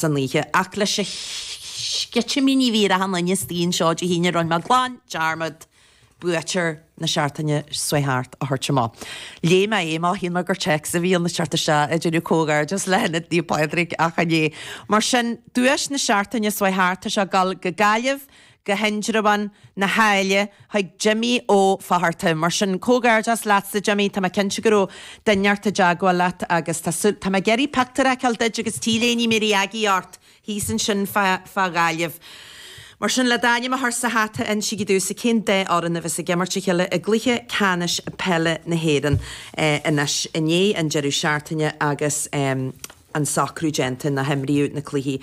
san oíche. Ach leis na sceitimíní a bhí ar achan nduine insan seó Dé hAoine rinne mé glan dearmad buaiteoir na seachtaine seo thart a thabhairt amach. Léigh mé é má shíl mé gur téacs a bhí ann thart a sea ag déanamh comhghairdeas le hIonad Naomh Pádraig ach chan é. Mar sin duais na seachtaine seo thart tá sé ag dul go Gaillimh go hIndreabhán na hAille chuig Jimmy Ó Fátharta. Mar sin, comhgairdeas leatsa Jimmy, tá mé cinnte go raibh duine inteacht i dteagmháil leat agus tá súil, tá mé ag iarraidh pictiúr a fheiceáil duit agus t-léine RnaG ort thíos ansin fá fá Ghaillimh. Mar sin, le d'ainm a chur sa hata insígí domhsa cén dá fhoireann a bheas ag imirt a chéile i gcluiche ceannais peile na hÉireann anois i ndiaidh an deireadh seachtaine agus an socrú déanta nó himríodh na cluichí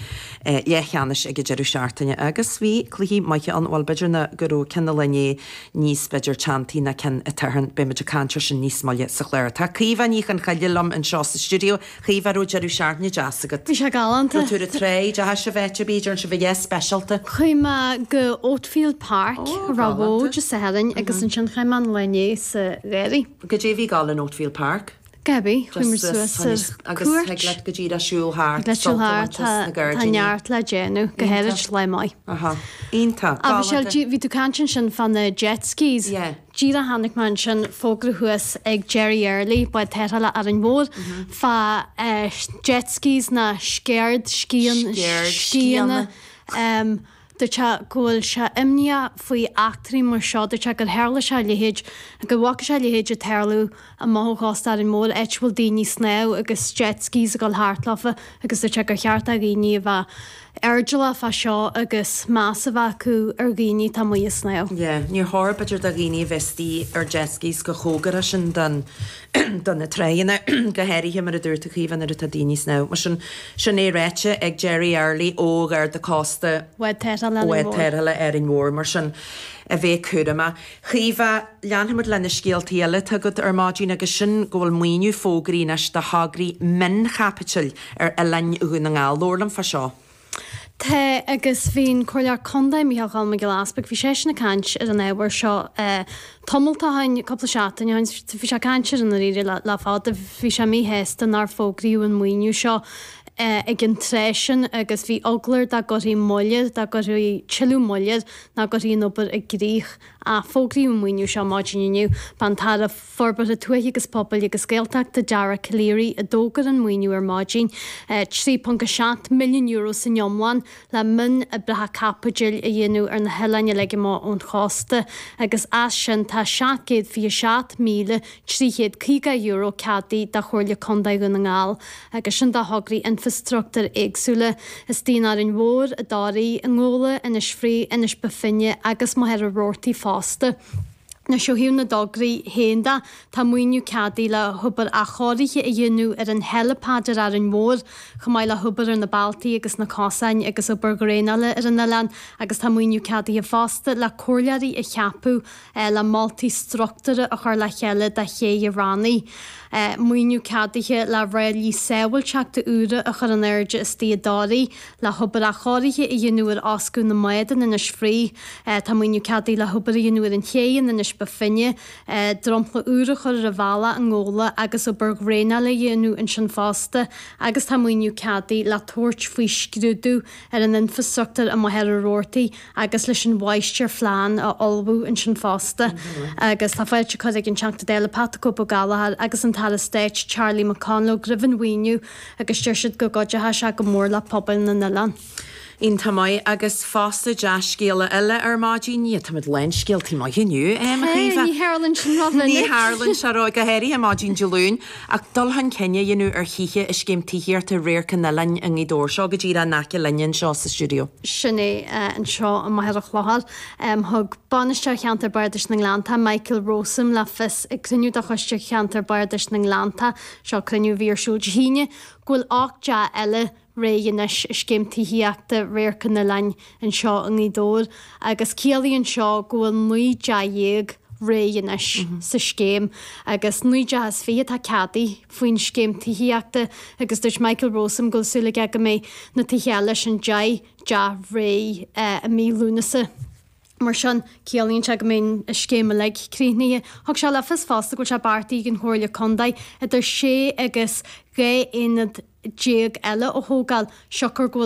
leathcheannais ag an deireadh seachtaine agus bhí cluichí maithe ann, bhuel b'fhéidir ná go raibh ceann an lae inné níos b'fhéidir teanntaí ná ceann an tSathairn, beimid ag caint ar sin níos moille sa chlár. Tá Caoimhe Ní Chonchoille liom anseo sa stiúideo. Caoimhe, an raibh deireadh seachtaine deas agat? Bhí sé galánta. Raibh tú ar an traein? D'fhéach sibh eitilt b'fhéidir anseo, bhí, yeah, speisialta. Chuaigh mé go Oakfield Park, Oh, a raibh galánta. bhfód sa Sathairn agus ansin chuaigh mé an lá inné sa Mhachaire. Goidé a bhí ag dul in Oakfield Park? Gabby, Chuamar suas ar cuairt. Thig leat go dtí le siúl thart. Le siúl thart, tá neart le déanamh, go háirid lá maith. Aha, iontach. Agus Sil, bhí tú ag caint ansin fá na jet skis. Yeah. Díreach chonaic mé ansin fógra thuas ag Jerry Early, bád tarrthála Árainn Mhór, fá jet skis nó scaird, scíon, scíonna. Scairdscíonna. dúirt sé go bhfuil sé imníoch faoi eachtraí mar seo, dúirt sé gur tharla sé a leithéid, go bhfaca sé a leithéid ag tarlú amach ó chósta Árainn Mhóir áit a bhfuil daoine ag snámh agus jet skis ag dul thart leofa agus dúirt sé gur cheart do dhaoine a bheith airdeallach fá seo agus meas a bheith acu ar dhaoine atá amuigh ag snámh. Yeah, níor chóir b'fhéidir do dhaoine a bheith istigh ar jet skis chomh cóngarach sin don. do na tránna, go háirithe, mar a dúirt tú Caoimhe, nuair atá daoine ag snámh. Mar sin, sin é ráite ag Jerry Early ó Gharda Cósta. Bád Tarrthála Árainn Bád Mhór. Tarrthála Árainn Mhór. Mar sin a bheith cúramach. Caoimhe, leanfaimid le na scéaltaí eile atá agat ar maidin agus sin go bhfuil maoiniú fógraithe anois do thograí mion-chaipitil ar oileáin Dhún na nGall. Labhair liom fá seo. Tá, agus bhí an Comhairleoir Contae, Micheál Choilm Mac Giolla Easbuig, bhí seisean ag caint ar an ábhar seo tamalt ó shoin, cúpla seachtain ó shoin, bhí sé ag caint air i ndáiríre le fada, bhí sé míshásta nár fógraíodh an maoiniú seo ag an tráth sin agus bhí eagla air dá gcuirfí moill air, dá gcuirfí tuilleadh moille air nach gcuirfí an obair i gcrích. Ach fógraíodh an maoiniú seo maidin inniu, bainfear tairbhe. Forbartha Tuaithe agus Pobail agus Gaeltachta Dara Calleary a d'fhógair an maoiniú ar maidin, €3.7 milliún san iomlán le mionoibreacha caipitil a dhéanamh ar na hoileáin uilig amach ón chósta agus as sin tá €727,350 ceadaithe do Chomhairle Contae Dhún na nGall agus sin do thograí infreastruchtúir éagsúla. Istigh in Árainn Mhór, i dToraigh, i nGabhla, Inis Fraoigh, Inis Bó Finne agus Machaire Rabhartaigh fosta. Anois ó thaobh na dtograí féin de, tá maoiniú ceadaithe le hobair athchóirithe a dhéanamh ar an helipad ar Árainn Mhór, chomh maith le hobair ar na bealtaí agus na cosáin agus obair dhraenála ar an oileán agus tá maoiniú ceadaithe fosta le comhairleoirí a cheapadh le moltaí structúrtha a chur le chéile do chéidh an Rannaigh. Tá maoiniú ceadaithe le ráillí sábhailteachta úra a chur in airde istigh i dToraigh. le hobair athchóirithe a dhéanamh ar fhoscadh na mbád in Inis Fraoigh. Tá maoiniú ceadaithe le hobair a dhéanamh ar an chéidh in Inis Bó Finne, dromchla úr a chur ar an bhealach i nGabhla agus obair dhraenála a dhéanamh ansin fosta agus tá maoiniú ceadaithe le tabhairt faoi scrúdú ar an infreastruchtúr i Machaire Rabhartaigh agus leis an mháistirphlean a ullmhú ansin fosta agus tá fáilte curtha ag an Teachta Dála Pat the Cope Ó Gallchóir agus an tAire Stáit Charlie McConalogue roimh an mhaoiniú. agus deir siad go gcuideochadh sé go mór le pobail na n-oileán. Iontach maith agus fosta dea-scéala eile ar maidin. Tá muid lán scéalta maithe inniu, a Chaoimhe. Ní tharlann sin rómhinic. Ní tharlann sé ró, go háirithe maidin Dé Luain. Ach dul chun cinn á dhéanamh ar thithe i scéim tithíochta Radharc an Oileáin i nGaoth Dobhair. Seo go díreach in aice linne anseo sa stiúideo. Sin é anseo i Machaire Chlochair. Thug Bainisteoir Cheantar Bardais na nGleanntach, Michael Rowsome, le fios ag cruinniú de Choiste Cheantar Bardais na nGleanntach Seo cruinniú mhíosúil Dé hAoine go bhfuil ocht dteach eile réidh anois i scéim tithíochta Radharc an Oileáin anseo i nGaoth Dobhair agus ciallaíonn seo go bhfuil naoi dteach dhéag réidh anois sa scéim agus naoi dteach is fiche atá ceadaithe faoin scéim tithíochta agus dúirt Michael Rowsome go bhfuil súil aige go mbeidh na tithe eile sin deich dteach réidh i mí Lúnasa. Mar sin, ciallaíonn sé go mbeidh an scéim uilig críochnaithe. Thug sé le fios fosta go bhfuil sé beartaithe ag an Chomhairle Contae idir sé agus 12 aonad eile a thógáil siocair go bhfuil